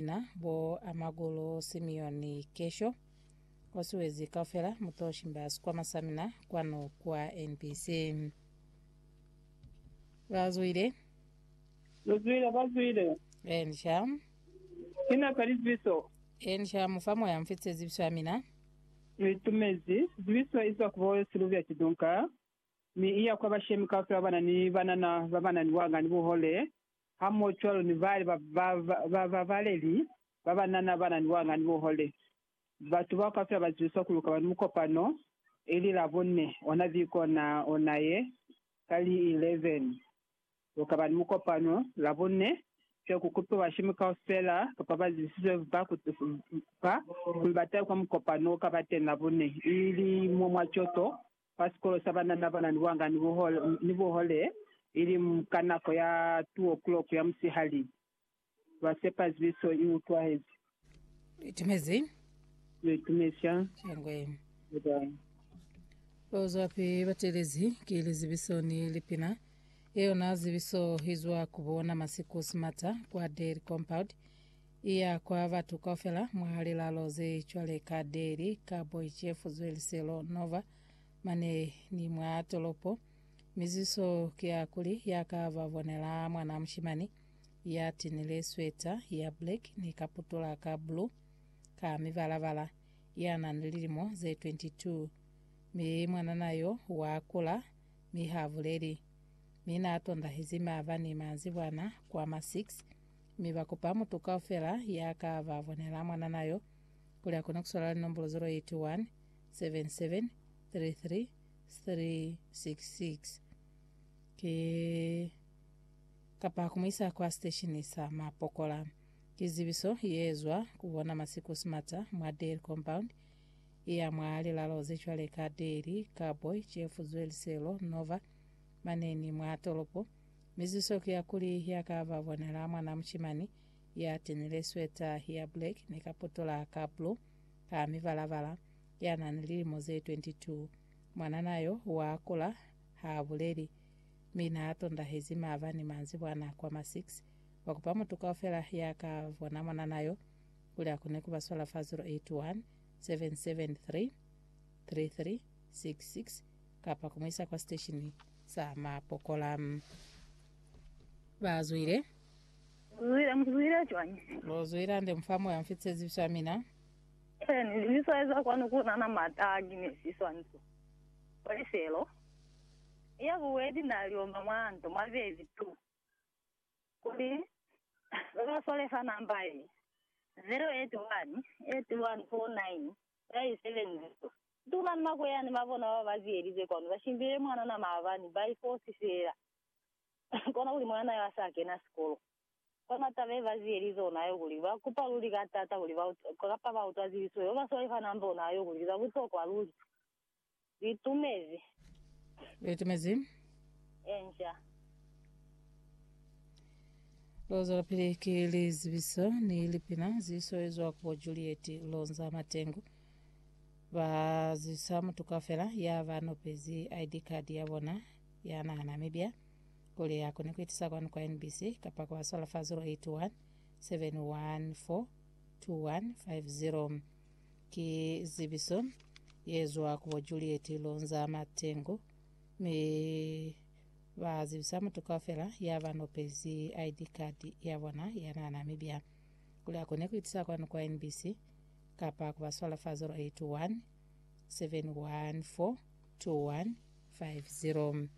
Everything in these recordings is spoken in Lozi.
Na bo amakulu Simeoni Kesho o suezi kaufela mu to shimba sikwama sa mina kwanu kwa NBC. Ba zwile. Lu zwile, ba zwile. Ensha. Ina ka lizibiso. Ensha mu fa moya mfitise zibiso ya mina. Lu itumezi. Zibiso izwa ku bo Sylvia Chidunka mi iya kwa bashemi kaufela ba na ni banana ba ba na ni buhanga ni buhole hamohocwalo ni bali ba ba ba babaleli ba banana bana ni wanga ni buhole. Batu bao kaufela ba ziwiswa kuli ukaba ni mukopano, ili Labone, ona viko ona ona ye, ka li 11. Ukaba ni mukopano, Labone, fye ku kupiwa bashemi kaufela kapa ba zisizwe ba ku ba kuli ba tahe kwa mukopano o kaba teñi Labone, ili mwa mwa coto kwa sikolo sa banana ba na ni buhanga ni buhole, ili ka nako ya two o'clock ya musihali. Ba sepa zibiso i utwahezi. Lu itumezi? Lu itumezi sha. Shangwe. Bye-bye. Ba zwapi ba telezi ki lizibiso ni lipina? Ye yona zibiso i zwa ku bona masiku simata kwa Dairy Compound. Iya kwa batu kaufela mwa lilalo ze cwale ka Delhi, Kharboychev, Zweliselo, Nova, mane ni mwa tolopo. Miziso ki ya kuli ya ka ba bonela mwana mushimani ya tinile sweta ya black ni kaputula ka blue ka mibala-bala ya na ni lilimo ze 22. Mi mwanana yo wa kula mi ha buleli. Mi na tondahezi maaba ni manzibwana kwa ma 6 mi ba kupa mutu kaufela ya ka ba bonela mwanana yo kuli a kone ku swala linombolo 081 77 33 366 ki kapa ku mu isa kwa siteshini sa mapokola. Ki zibiso ye zwa ku bona Masiku Smarter mwa Dairy Compound ya mwa lilalo ze cwale ka Dairy, Carboy, Chefuzwe, Liselo, Nova, mane ni mwa tolopo. Mizuso ki ya kuli ya ka ba bonela mwana mushimani ya tenile sweta ya black ni kaputola ka blue ka mibala-bala, ya na ni lilimo ze 22. Mwanana yo wa kula, ha buleli, mi na tondahezi maabani manzibwana kwa ma 6. Ba kupa mutu kaufela ya ka bona mwanana yo kuli a kone ku ba swala fa 081 773 3366 kapa ku mu isa kwa siteshini sa mapokola. Ba zwile. Mu zwile, mu zwile cwañi? Lo zwila nde mu fa moya mfi tsezibiso ya mina. Ee, ni libiswa eza kwanu ku na na mata a ki ne si swanisa. Kwa lifelo, ya bubedi na liomba mwa nto mwa bezi tu. Kuli, Ba ba swale fa namba ye, 081 81 49 Ba isebenzize Tuma ni makweyani ba bona ba ba ziyelize kwanu, ba shimbile mwanana maabani, ba ifosi feela kona kuli mwanana yo a sa kena sikolo. Kona taba ye ba ziyelize ona yo kuli, ba kupa luli ka taata kuli ba utwa, kapa ba utwa zilisuho. Yo ba swalifanang bona yo kuli ki za butokwa luli. Litumezi. Litumezi. Enja. Lo zwelapili ki lizibiso ni lipina zi swelezwa ku bo Juliet Lonza Matengu ba zibisa mutu kaufela ya ba nopezi ID card ya bona ya naha Namibia kuli a kone ku itisa kwanu kwa NBC kapa ku ba swala fa 081 714 2150. Ki zibiso ye zwa ku bo Juliet Lonza Matengu, mi ba zibisa mutu kaufela ya ba nopezi ID card ya bona ya na Namibia kuli a kone ku itusa kwanu kwa NBC kapa ku ba swala fa 081 7142150.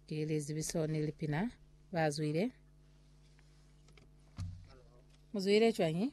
Ki lizibiso ni lipina ba zwile. Mu zwile cwañi?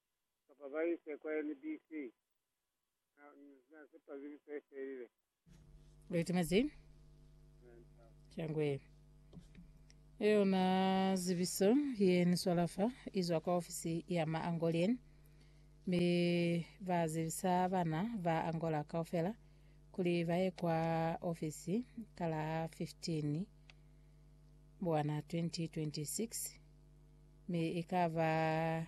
kapa ba ise kwa NBC. Na, na sepa bili se felile. Leti mazi. Changwe. Eyona zibiso ye ni swalafa izwa kwa ofisi ya ma Angolien. Mi ba zibisa bana ba Angola kaufela kuli ba ye kwa ofisi ka la 15 buwana 2026 mi ikaba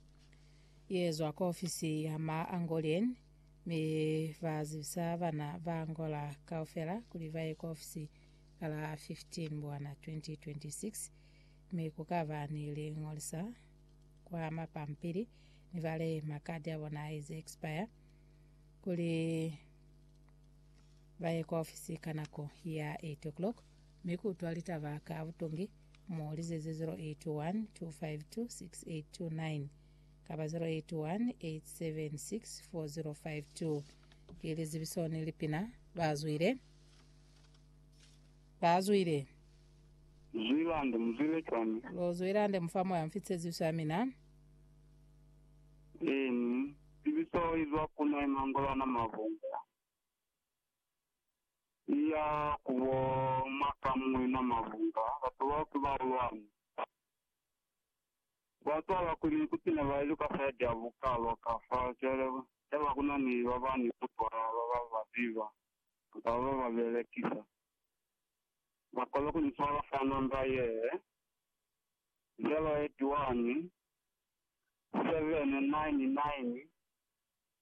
Yezwa ku ofisi ya ma Angolean mi ba zibisa bana ba Angola kaufela kuli ba ye ku ofisi ka la 15 Mbwana 2026 mi ku ka ba ni lingolisa kwa mapampili ni bale makadi a bona a ize expire kuli ba ye ku ofisi ka nako ya 8 o'clock. mi ku utwa litaba ka butungi, mo li zize 081 252 6829 kapa 081 876 4052. Ki lizibiso ni lipina ba zwile, ba zwile. Zwilande muzwile cwani? Lo Zwilande mufa moya mfi tseziso ya mina. Eeni, zibiso izwa ku na imangolwana mavunga. Iya ku bo ma ka muñwi mwa mabunga, batu bao ki bahulwani. Ba cwala kuli ikuti ne ba iluka saidi ya bukalwa ka fa, cwale ha ba ku na ni ba ba ni kutwala, ba ba ba ziba, kamba ba ba ba belekisa. Ba kona ku ni cwala fa namba yee, 081 799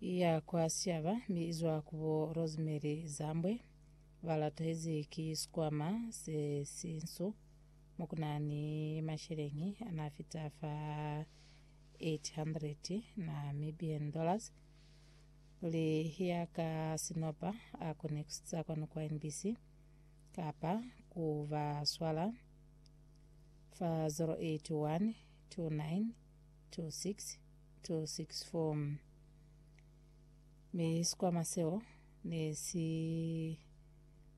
ya kwa Siyaba mi izwa ku bo Rosemary Zambwe balatezi ki sikwama se sinsu mokunani masheleñi anafita fa 800 Namibian dollars kuli ya ka sinopa akone kusitsa kwanu kwa NBC kapa ku ba swala fa 081 29 26264 Mi sikwama seo ne si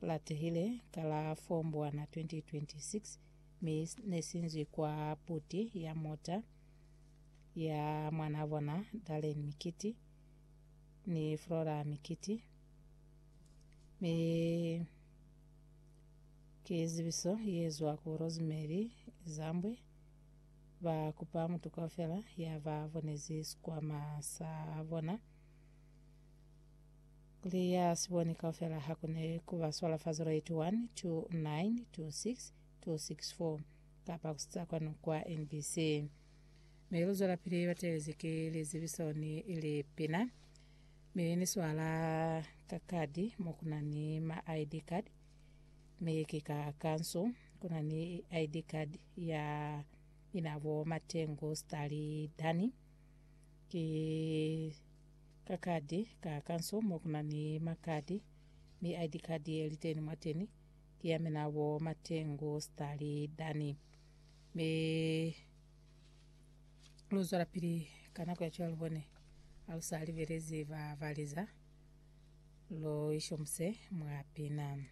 latehile ka la 4 Mbwana 2026 mi ne si nzwi kwa puti ya mota ya mwanaa bona Darlene Mikiti ni Flora Mikiti mi ki zibiso ye zwa ku Rosemary Zambwe Ba kupa mutu kaufela ya ba bonezi sikwama sa bona, kuli ya si boni kaufela ha kune ku ba swala fa 0812926264 kapa ku sitsa kwanu kwa NBC. Mi lu zwelapili ba teelezi ki lizibiso ni lipina. Mi ni swala ka kadi mo ku na ni ma ID card Mi ki ka kanso kuna ni ID card ya ina bo Matengu Stali Dani. Ki ka kadi ka kanso mo kuna ni makadi mi ID card ye liteni mwateni ki ya mina bo Matengu Stali Dani. Mi luzwala pili ka nako ya cwalo bone alusali belezi ba baliza. Lu ishomuse mwa pina.